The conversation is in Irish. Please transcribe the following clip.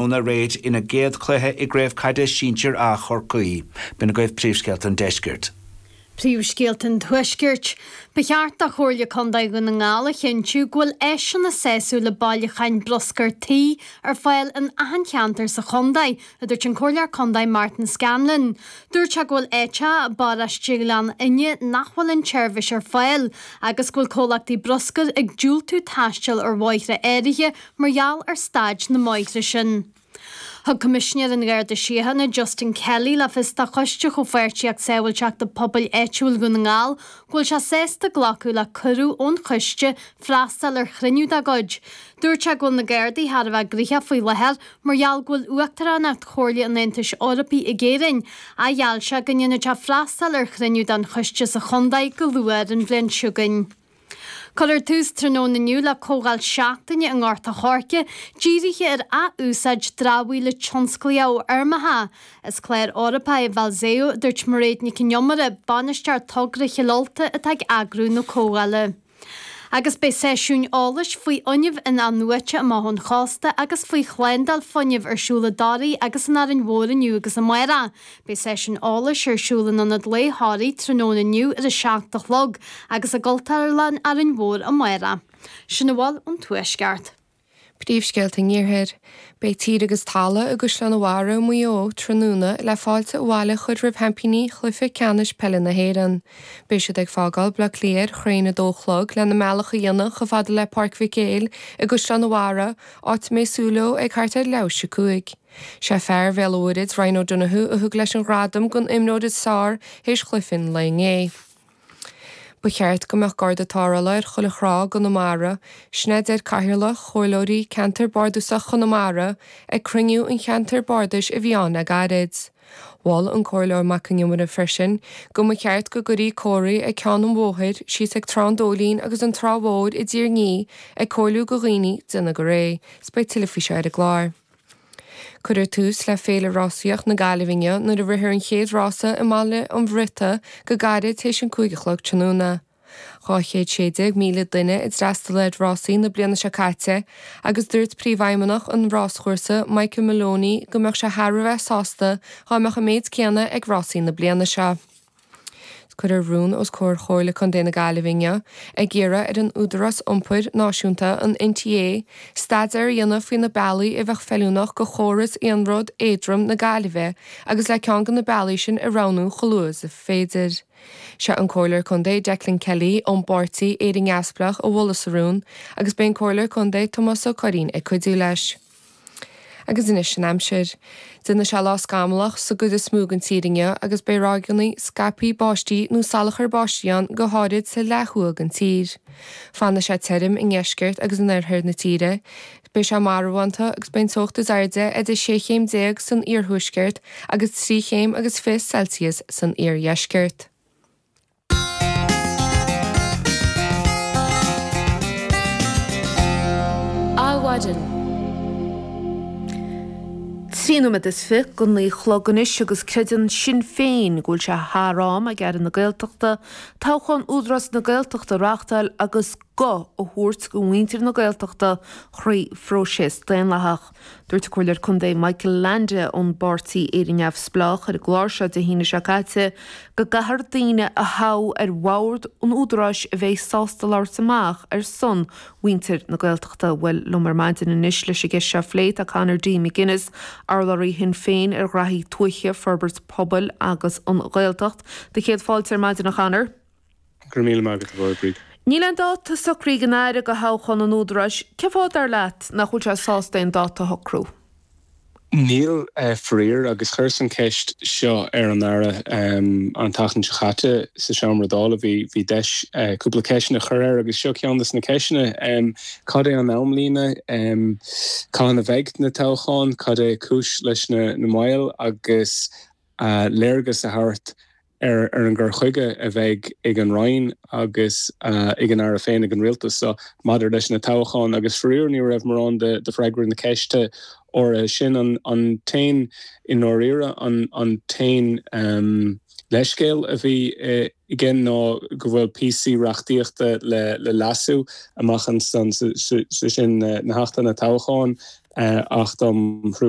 óna réid ina gcéad cluiche i gCraobh Caide Sinsir A Chorcaí. B'in agaibh príomhscéalta an deiscirt. Príomhscéalta an tuaiscirt. Ba cheart do Chomhairle Contae Dhún na nGall a chinntiú go bhfuil áiseanna sásúla bailiúcháin bruscair tí ar fáil in achan cheantar sa chontae, a dúirt an Comhairleoir Contae Martin Scanlon. Dúirt sé go bhfuil áit a, i bparóiste Ghleann Fhinne, nach bhfuil an tseirbhís ar fáil agus go bhfuil comhlachtaí bruscair ag diúltú taisteal ar bhóithre áirithe mar gheall ar staid na mbóithre sin. Thug Coimisinéir an Gharda Síochána, Justin Kelly, le fios do Choiste Chomhpháirtíocht Sábháilteachta Pobail Áitiúil Dhún na nGall go bhfuil sé sásta glacadh le cuireadh ón choiste freastal ar chruinniú dá gcuid. Dúirt sé go bhfuil na Gardaí thar a bheith graoithe faoi láthair mar gheall go bhfuil Uachtaránacht Chomhairle an Aontais Eorpaigh ag Éirinn ach gheall sé go ndéanfaidh sé freastal ar chruinniú den choiste sa chontae go luath ar an bhliain seo chugainn. Cuireadh tús tráthnóna inniu le comhdháil seachtaine i nGort an Choirce dírithe ar ath-úsáid dramhaíola tionsclaíche ó fheirmeacha. Is clár Eorpach é Valseo, a dúirt Mairéad Nic an Iomaire, Bainisteoir Togra Chill Ulta, atá ag eagrú na comhdhála. Agus beidh seisiúin eolais faoi fhuinneamh in-athnuaite amach ón chósta agus faoi shlándáil fuinnimh ar siúl i dToraigh agus in Árainn Mhór inniu agus amárach. Beidh seisiún eolais ar siúl in Ionad Lae Thoraí tráthnóna inniu ar a seacht a chlog agus i gCultúrlann Árainn Mhór amárach. Sin a bhfuil ón Tuaisceart. Príomhscéalta an Iarthair, Beidh Tír agus Talamh i gCaisleán a' Bharra i Maigh Eo tráthnóna le fáilte abhaile a chur roimh sheaimpíní Chluiche Ceannais Peile na hÉireann. Beidh siad ag fágáil Bleá Cliath ar cheathrú chun a dó a chlog lena mbealach a dhéanamh chomh fada le Páirc Mhic Éil i gCaisleán a' Bharra, áit a mbeidh súil leo ag thart ar leath is a cúig. Sé fear Bhéal a'Mhuirthid, Ryan O'Donoghue, a thug leis an gradam don imreoir is fearr théis chluiche an lae inné. Ba cheart go mbeadh garda tarrthála ar chuile thrá i gConamara, sin a deir Cathaoirleach Chomhairleoirí Ceantar Bardasach Chonamara ag cruinniú an cheantair bardais a bhí ann le gairid. Mhol an Comhairleoir Mac Con Iomaire freisin go mba cheart go gcuirí comharthaí ag ceann an bhóthair síos ag Trá an Dóilín agus an Trá Mhór i dTír an Fhia ag comhairliú go dhaoine déanamh go réidh. Beidh tuilleadh faoi seo ar an gclár. Cuirfear tús le Féile Rásaíocht na Gaillimhe inniu nuair a rithfear an chéad rása i mBaile an Bhriotaigh go gairid tar éis an cúig a chlog tráthnóna. 216,000 duine a d'fhreastail ar rásaí na bliana seo caite agus dúirt príomhfheidhmeannach an ráschúrsa Michael Maloney go mbeadh sé thar a bheith sásta dhá mbeadh an méid céanna ag rásaí na bliana seo. Cuirfear rún os comhair Chomhairle Contae na Gaillimhe inniu ag iarraidh ar an Údarás Iompair Náisiúnta, an NTA, staidéar a dhéanamh faoi na bealaí a bheadh feiliúnach go chóras iarnród éadrom na Gaillimhe agus le ceann de na bealaí sin a roghnú chomh luath is is féidir. Sé an Comhairleoir Contae Declan Kelly ón bpáirtí Éire Neamhspleách a mholfas an rún agus beidh an Comhairleoir Contae Tomás Ó Curraoin ag cuidiú leis. Agus anois an aimsir. Déanfaidh sé lá scamallach sa gcuid is mó den tír inniu agus beidh ráigeannaí scaipthe báistí nó salachar báistí ann go háirid sa leath thuaidh den tír. Fanfaidh sé tirim i ndeisceart agus in oirthear na tíre. Beidh sé marbhánta agus beidh an teocht is airde idir sé chéim déag san iarthuaisceart agus trí chéim agus fiche Celsius san iardheisceart. Adhmhaidin. Trí nóiméad is fiche go naoi a chlog anois agus creideann Sinn Féin go bhfuil sé thar am ag Aire na Gaeltachta toghchán Údarás na Gaeltachta a reachtáil agus guth a thabhairt do mhuintir na Gaeltachta thrí phróiseas daonlathach. Dúirt an Comhairleoir Contae Michael Leainde ón bPáirtí Éire Neamhspleách ar an gclár seo Dé hAoine seo caite go gcaithfear daoine a thoghadh ar bhord an Údaráis a bheidh sásta labhairt amach ar son muintir na Gaeltachta. Bhuel liom ar maidin anois leis an gceist seo a phlé tá Conor D. McGuinness, urlabhraí Shinn Féin ar ghnaithí tuaithe, forbairt pobail agus an Ghaeltacht. Dé do chéad fáilte ar maidin a Chonor. Go raibh míle maith agat, a Mhaighread. Níl aon dáta socraithe ag an Aire do thoghchán an Údaráis. Cén fáth, dar leat, nach bhfuil sé sásta aon dáta a shocrú? Níl, faraor, agus chuireas an cheist seo ar an Aire an tseachtain seo caite sa seomra Dála. Bhí deis cúpla ceisteanna a chur air agus seo ceann dos na ceisteanna. Cad é an amlíne? Cathain a bheidh na toghcháin? Cad é cúis leis an moill? Agus léargas a thabhairt ar an gcur chuige a bheidh ag an Roinn agus ag an Aire féin, ag an Rialtas so, maidir leis na toghcháin. Agus faraor ní raibh mórán de freagra na ceiste áirithe sin, an t-aon, i ndáiríre, an t-aon leithscéal a bhí aige ná go bhfuil píosaí reachtaíochta le leasú amach ansan, sé sin na hAchtanna Toghcháin, Acht um Thruailliú.